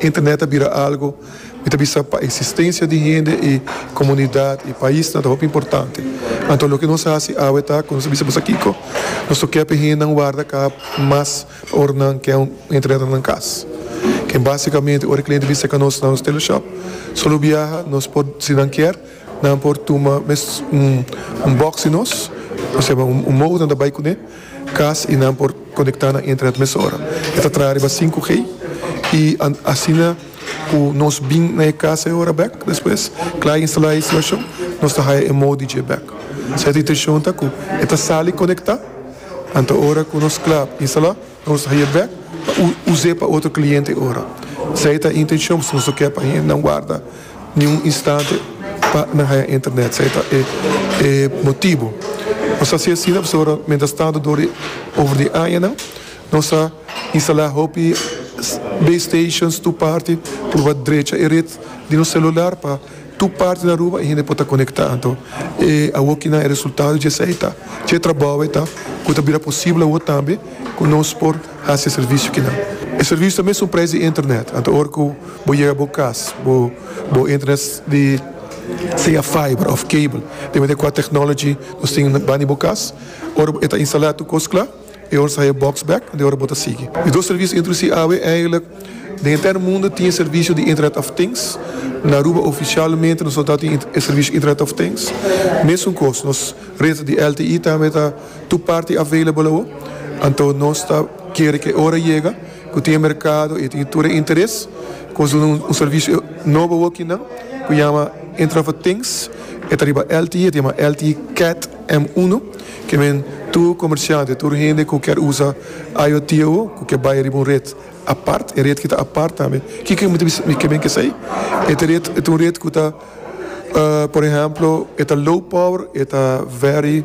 Internet a bira algo mi ta bisa pa existencia di hende y comunidad y paisnan ta hopi importante. Anto loke nos haci awe ta cu nos a bisa boso kico nos lo kepe hendenan warda ca mas pa ora nan ken Internet na nan cas. Ken basicamente ora e cliente bisa ca nos na nos teleshop solo biaha nos por si nan kier. Nan por tuma mes un un box di nos, oseba un un modem ta bai kuné kas i nan por konektá na internet mesora. E ta traha riba sinku G i asina ku nos bin na e kas e ora bèk despues, kla e instalá e instalashon, nos ta haya e modi dje bèk. Sa e ta inteshon ta ku e ta sali konektá, anto ora ku nos kla instalá. Nos haya bek pa us'é pa otro kliente ora. Esei ta e intenshon pasobra nos no ke pa hendenan warda ni un instante pa nan haya internet. Esei ta e motibu. Nos hasi asina pasobra mientras tantu dor di over di añanan nos a instala hopi base stations tur parti purba drecha e ret di nos celular pa Tur parti na Aruba e hende por ta conecta anto e awo kinan e resultado dje esei ta dje trabao e ta cu ta bira posibel awo tambe cu nos por haci e servicio kinan. E servicio ta mesun prijs di internet anto ora cu bo yega bo cas bo bo internet di sea fiber of cable depende cu a technology nos tin bani bo cas ora e ta instala tur cos cla. E ora sa e box bek and e ora bo ta sigui. E dos servicio introduci awe eigenlik den enter mundo tin e servicio di internet of things. Na Aruba oficialmente nos no ta tin e servicio internet of things. Mesun cos nos red di LTE tambe ta tur parti available awo. Anto nos ta kere cu e ora yega cu tin e mercado y e tin tur e interes cu nos duna un servicio nobo awo kinan cu yama internet of things. E ta riba LTE, e ta yama LTE cat. M uno, Ke men tur komersiante, tur hende ku kèr usa IoT awo, ku ke bai riba un ret apart, e ret ki ta apart tambe. Kiko mi ta bisa ke men ke sa ei? E ta ret, e ta un ret ku ta, por ehèmpel, e ta low power, e ta very,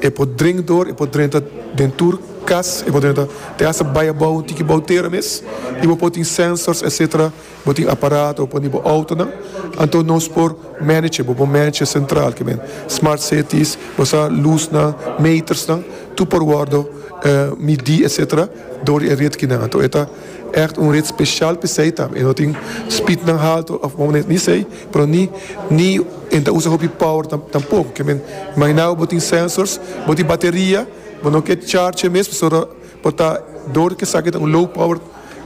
e por drenta dor, e por drenta den tur kas, e por drenta te hasta bai abou, tiki bou tera mes, i bo por tin sensors, etsetera. Bo tin aparato pa di bo outonan, anto nos por manage bo, bo manage centralkemen. Smart cities, bo sa lusnan, metersnan, tur por wordo midi etc. Dor di e ret kinan. Anto e ta echt un ret special pa esei tam. E no tin speednan halto of bo maner ni esei, pero ni ni e ta usa hopi power tampoco. Kemen imagina bo, bo tin sensors, bo tin bateria, bo no ke charge e mes pasobra bo ta dor di esaki ta un low power.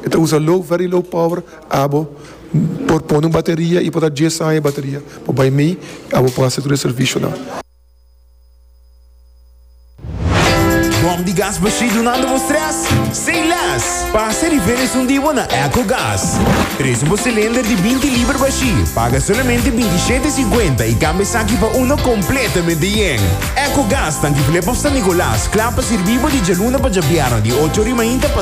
E ta usa low, very low power, abo por pone un bateria y por ta dies aña e bateria por bay mey y abo por haci tur e servicionan. Bom di gas bashí dunando bo stress? Say less! Pasa di ven esun di bo na Ecogas. Presu bo cilinder di binti liber bashí, paga solamente binti shete cincuenta y cambia esaki pa uno completamente yen. Ecogas tanki Flip of San Nicolas cla pa sirbi bo di djaluna pa djabièrna di ocho rimainta pa